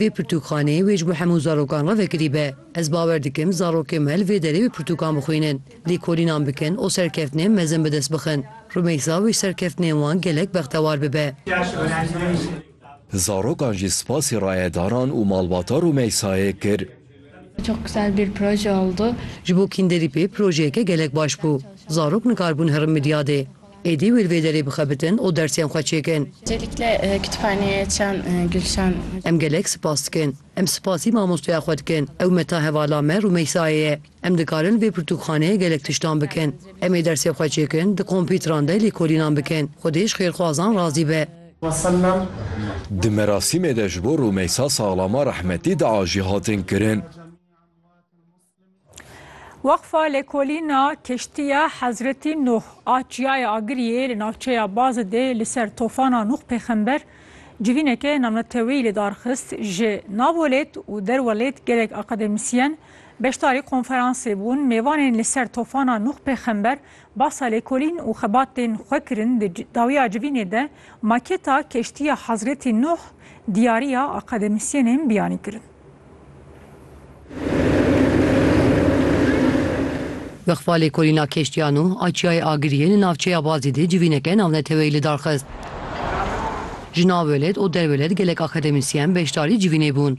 Vê pirtûkxaneyê wê ji bo hemû zarokan re vekirî be. Ez bawer dikim zarokên me li vê derê wê pirtûkan bixwînin, lêkolînan bikin û serkeftinên mezin bi dest bixin. Rumeysa wê ji serkeftinên wan gelek bextewar bibe. Zarokan jî spasî rayedaran û malbata Rumeysayê kir. Çok güzel bir proje oldu. Ji bo kînderî pê projeyeke gelek baş bû. Zarok nikaribûn herin midyadê. Êdî wê li vê derê bixebitin û dersên xwe çêkin. Öncelikle Kütüphaneye Çan Gülşan. Em gelek sipas dikin. Em sipasî mamostoya xwe dikin. Ew me ta hevala me Rûmeysayê ye. Em dikarin li vê pirtûkxaneyê gelek tiştan bikin. Em ê dersê xwe çêkin, di kompîtran de lêkolînan bikin. Xwedê ji xêrxwazan razî be. Di merasîmê de ji bo Rûmeysa Saxlama rehmetî dua jî hatin kirin. Weqfa Lêkolîna Keştiya Hezretî Nuh a Çiyaya Agiriyê li navçeya Bazidê li ser tofana Nuh pêxember civîneke namneteweyî lidarxist. Ji nav welêt û der welêt gelek akademîsyen beşdarî konferansê bûn. Mêvanên li ser tofana Nuh pêxember Bahsa lêkolîn û xebatên xwe kirin di dawiya civînê de maketa keştiya Hazretî Nuh diyariya akademîsyenên biyanî kirin. Bixfa lêkolîna keştiya Nuh a Çiyayê Agiriyê li navçeya Bazî dê civîneke navneteweyî lidarxist. Ji navwelêt û derwelêt gelek akademîsyen beşdarî civînê bûn.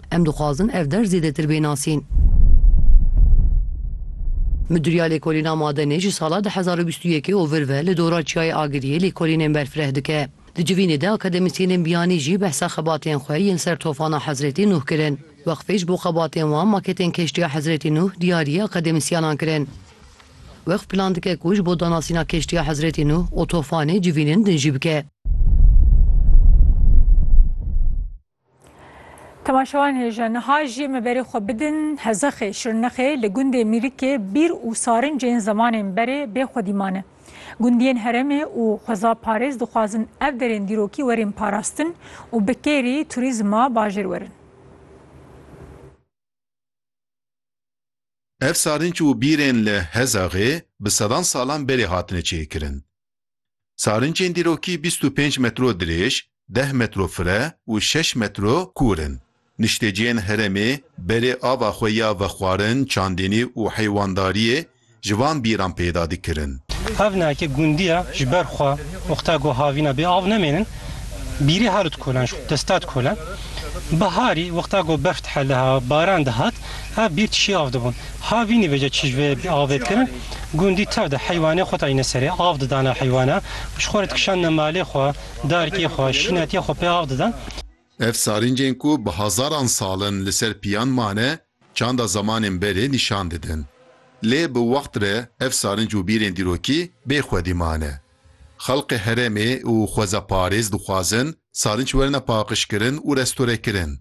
Em dixwazin ev der zêdetir bê nasîn. Midûriya Lêkolîna Madenê ji sala du hezar û bîst û yekê û vir ve li dora Çiyayê Agiriyê lêkolînên berfireh dike. Di civînê de akademîsyênên biyanî jî behsa xebatên xwe yên ser tofana Hezrêtî Nuh kirin. Weqfê ji bo xebatên wan maketên keştiya Hezrêtî Nuh diyarî akademîsyanan kirin. Weqf plan dike ku ji bo danasîna keştiya Hezrêtî Nuh û tofanê civînên din jî bike. Temaşewan hêja niha jî me berê xwe bidin Hezexê, Şirnexê li gundê Mîrikê bîr û sarincên zemanên berê bê xwedî mane. Gundiyên herêmê û xweza parêz dixwazin ev derên dîrokî werin parastin û bi kêrî turîzma bajêr werin. Ev sarinc û bîrên li Hezaxê bi sedan salan berê hatine çêkirin. Sarincên dîrokî bîst û pênc metro dirêj, deh metro fire û şeş metro kûr in. Nişteciyên herêmê berê ava xwe ya vexwarin, çandinî û heywandariyê ji van bîran peyda dikirin. Ev ne ke gundiya ji ber xwe wexta ku havîna bê av nemênin, bîrê herit kolan ji destat kolan. Biharî wexta ku berf dihele, baran dihat, Ev bîr tişî av dibûn. Ha vînî vêce çi ji vê avê dikirin, gundî tev de heywanê xwe tayîne serê, av didane heywana, ji xwe re dikişandine malê xwe, darikê xwe, şînetiyê xwe pê av didan. Ev sarîncên ku bi hezaran sal in li ser piyan mane, çanda zemanên berê nîşan didin. Lê bi wext re ev sarinc û bîrên dîrokî bê xwedî mane. Xelkê herêmê û xwezeparêz dixwazin sarinç werine paqijkirin û restorekirin.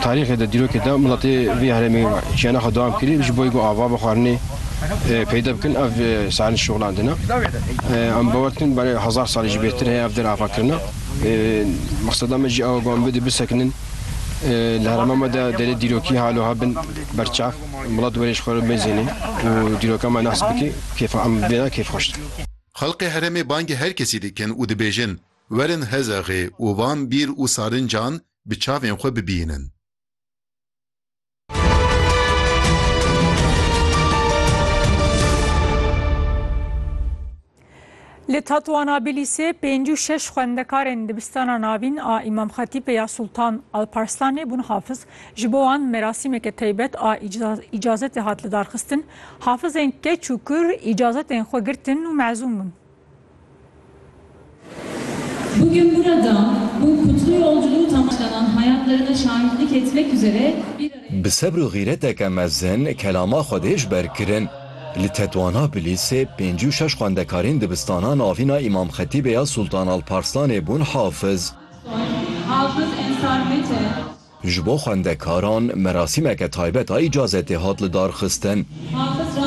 Tarîxê de, dîrokê de miletê vê herêmê jiyana xwe dewam kirî ji boyê ku ava bi xwarinê peyde bikin ev sarinç şoxlandine. Em bawer dikin belê hezar salî jî bêhtir heye ev der avakirine. Mexseda me jî ew e ku em bidê bisekinin li herêma me de derê dîrokî halo hebin berçav. Mala tu berêj xwe re mêzênî û dîroka me nehs bikî kêfa em bêra kêfxweş de. Xelkê herêmê bangê her kesî dikin û dibêjin, Werin Hezexê û van bîr û sarincan bi çavên xwe bibînin. Li Tatoanabilîsê pêncî û şeş xwendekarên dibistana navîn a Îmam Xetîpê ya Sultan Alparslanê bûn hafiz. Ji bo wan merasîmeke taybet a îcazetê hat lidarxistin. Hafizên keç û kur îcazetên xwe girtin û mezûm bûn. Bugün burada bu kutlu yolculuğu tamamlanan hayatlarına şahitlik etmek üzere bir araya. Bi sebr û xîreteke mezin kelama xwe dê ji ber kirin. Li Tetwana Bilîsê pêncî û şeş xwendekarên dibistana navîna Îmam Xetîbê ya Sultan Alparslanê bûn hafiz. Hafız Ensar Mete. Ji bo xwendekaran merasîmeke taybet a îcazetê hat lidarxistin. Hafız.